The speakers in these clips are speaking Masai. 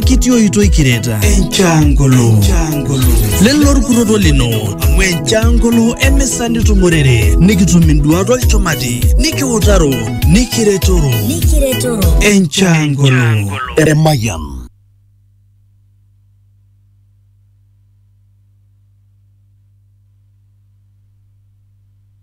kitii oitoi kireta enchangolo lelo orkutoto lino amu enchangolo emisa nitumorere nikitum induat olchumati nikiutaro nikiretoro enchangolo Emayian.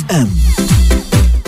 FM.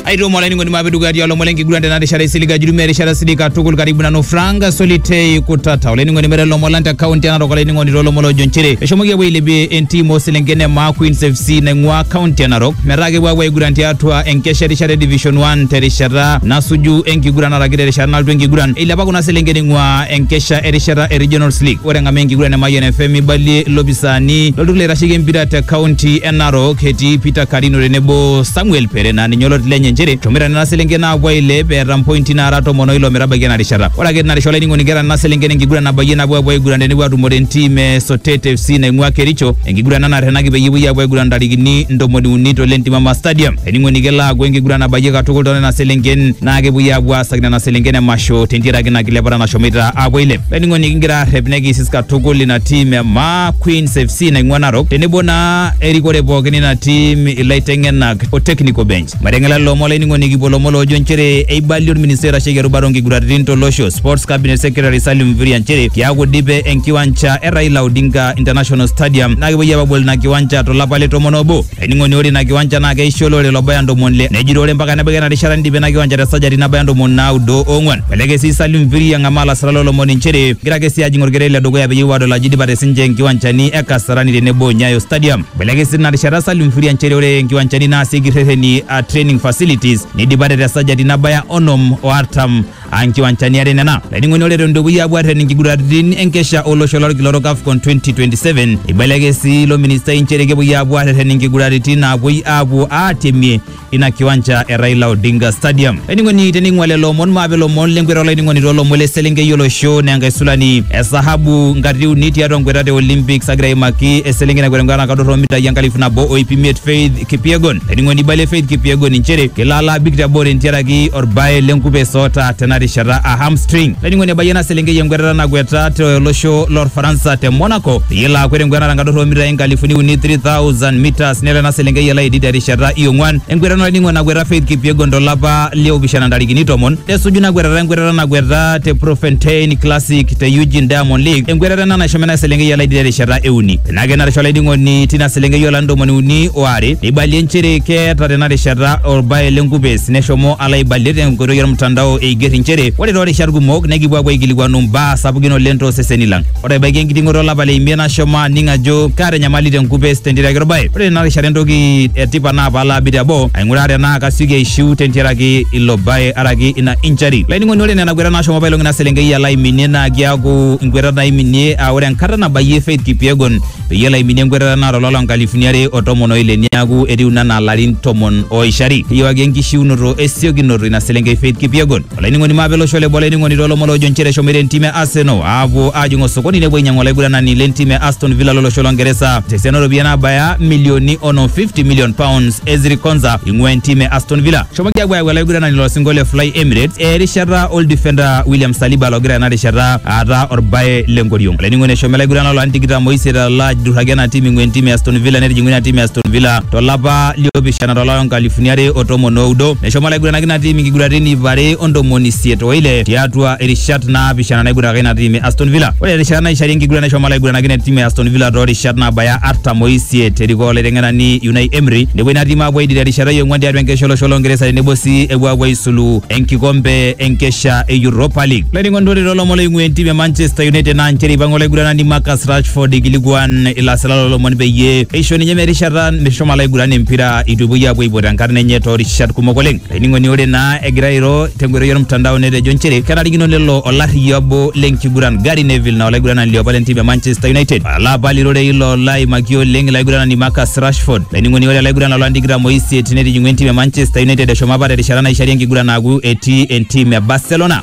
aitomo olainining'oni maape dukuya tialo olomon lenkiguran tena rishata isiliga jurumi erishata sidai katukul karibu nanu frank solitei kutata olainining'oni mere lomon lang te kaunti enarok olainining'oni toolomon loojo nchere eshomoki apuo ailepie entim ooselenken e maa queens fc naing'ua kaunti enarok metaa kepuo apuo aiguran tiatua enkesha erishata e division 1 terishata nasuju enkiguran araki terishata nalotu enkiguran eilepa kuna selenken ing'ua enkesha erishata e regionals league ore eng'amaa enkiguran e mayian fm ibalie ilopisaani lolturur loitasheki empira te kaunti Narok etii Peter Karino tenebo Samuel Pere naa ninye oloti lenye nchere eshomoita nena selenken aapuo ailep eeta mpointi naara tomon oilo metabaiki ena rishata. Ore ake tina rishata olainining'oni keeta nena selenken enkiguran nabayie nabo apuo aiguran tenepuo atumore entim e Sotet FC naing'ua Kericho, enkiguran ena naterrenaki peyie epuoi apuo aiguran ntarikini ntomoni uni to Lentimama Stadium. Olainining'oni kelo aaku enkiguran nabayie katukul too nena selenken naa kepuoi apuo aasaki nena selenken emasho tentiaraki ina kilepata nashomoita apuo ailep. Olainining'oni kigira aarrep nekiisis katukul ina tim e maa Queens FC naing'ua Narok tenebo naa erikore pookin ina tim ilaiteng'enak o technical bench. Mateng'ela lelo omon laining'oni kipuo lomon loojo nchere eibalie orministai oitasheki erubata onkiguraritin tolosho Sports Cabinet Secretary Salim Mvurya nchere kiaku idipe enkiwanja e Raila Odinga International Stadium naa kepuoi apa abol ina kiwanja tolapa le tomon obo. Ainining'oni ore ina kiwanja naa keisho olorere lobaya ntomoni ile nejito ore mpaka nebaiki ena rishata neidipa ina kiwanja te sajati nabaya ntomoni naudo oong'uan. Eleke sii Salim Mviri ang'amaa lasirak loo lomon inchere egira ake sii ajing olkererin le dukuya peyie epuo aadol ajo eidipate sinche nkiwanjani e Kasarani tenebo o Nyayo Stadium. Eleke sii tina rishata Salim Mviri inchere ore nkiwanjani naasieki rreteni aa training facilities neidipate te sajati nabaya onom o artam. ankiwanchani are nena laining'oni ore eton dukuya apuo arren inkiguraritin enkesha olosho lolkila orok AFCON 2027 eibeleke sii ilo ministai nchere kepuoi apuo areren inkiguraritin naapuoi apuo aatemie ina kiwancha e Raila Odinga Stadium laining'oni tening'ua lelo omon maape ilomon lenkweta olaining'oni toolomon le selenkei olosho naa enkaisulani e sahabu nkatitin uni tiatua nkweta te Olympics agira aimaki eselenkei nakwet enkwetata nakadur omitai enkalifu nabo o iip imiet Faith Kipyegon. Ening'oni Ibale Faith Kipyegon inchere kelo alo abik te boo tentiaraki orbae lenkupeso oota tena rishata a hamstring. Ening'oni ebayie ena selenkei enkwetata nakweta tolosho lorfaransa te Monaco peyie elo akwet enkwetata tenkadorro oomitai inkalifuni uni 3000 meters nelo ena selenkei alo aidid terishata iong'uan. Enkwetata olning'o nakweta Faith Kipyegon tolapa liopishana ntarikini tomon nesuju ina kwetata enkwetata nakweta te Profentein Classic te Eugene Diamond League enkwetata ena nashomo ena selenkei alo aidid terishata e uni. Tenake narisho olainining'oni tina selenkei olari ntomoni uni oare neibalie nchere keeta tena rishata orbae lenkupes neshomo alo aibalie tenkoitoi ormtandao eiger inchere ore toorishat kumok nekipuo apuo aikilikuanu mbaa sapukin oleng tooseseni lang. Ore ebaiki enkiting'oto olapa le imiet nashomo aning ajo kaata enyamali tenkupes tentiaraki orbae. Ore tena rishata entoki etipat naa paalo abik teboo aing'uraa tenaa kasioki aishiu tentiaraki ilo bae araki ina injury. Olainining'oni ore nena kuetat nashomo apailong ina selenkei alo aiminie naa kiaku nkuetat naiminie aa ore enkata nabayie David Kipyegon peyie elo aiminie enkwetata naata ololo nkalifuni are o tomon o ile niaku etiu ina naa larin tomon oishari. Keyiewaki enkishiunoto esiokinoto ina selenkei Faith Kipyegon. Olainining'oni maape olosho le boo olainining'oni toolomon loojo nchere eshomoita entim e Arsenal aapuo aajing osokoni nepuo ainyang'u olaiguranani le ntim e Aston Villa lolosho lo Ngeresa tesiana ooropiyiani naabaya milioni onom 50 million pounds. Ezri Konsa ing'ua entim e Aston Villa. Eshomoki aapuo ayau olaiguranani loo singo le Fly Emirates erishata oldifenda William Saliba logira ena rishata aata orbae le nkoriong. Olainining'oni eshomo laiguranani lolarin tikitam oisiet alo ajurraki ena tim ing'ua entim e Aston Villa netijing'u ina tim e Aston Villa tolapa liopishana tolari lonkalifuni are o tomon oudo. Neshomo laiguranaki ina tim inkiguraritin iip are o ntomoni isiet oile tiatua irishat naapishana naiguranaka ina tim e Aston Villa. Ore erishata naishari enkiguran neshomo laiguranaki ina tim e Aston Villa toorishat naabaya artam oisiet erikoo olaiteng'enani Unai Emery. Nepuo ina tim aapuo aidip terishata e ong'uan tiatua enkesha olosho lo Ngeresa tenebo sii epuo aapuo aisulu enkikombe enkesha e Europa League. laining'ondore lolomon loing'ua entim e manchester united naa nchere eipang'a olaiguranani marcus rashford ikilikuan ilasila lolomon peyie eisho ninye merishata meshomo alaiguran empira eitu epuoi apuo aipot enkarna enye toorishat kumok oleng laining'oni ore naa egira airo tenkoitoi ormtandao netejo nchere kenarikino nelo olarriyia obo lenkiguran gary neville naa olaiguranani liopa lentim e manchester united ala apal irorei ilo laimaki oleng ilaiguranani marcus rashford laining'oni ore olaiguran lolani tikitam oisiet netijing'ua entim e manchester united eshomo apa terishata naishari enkiguran aaku etii entim e barcelona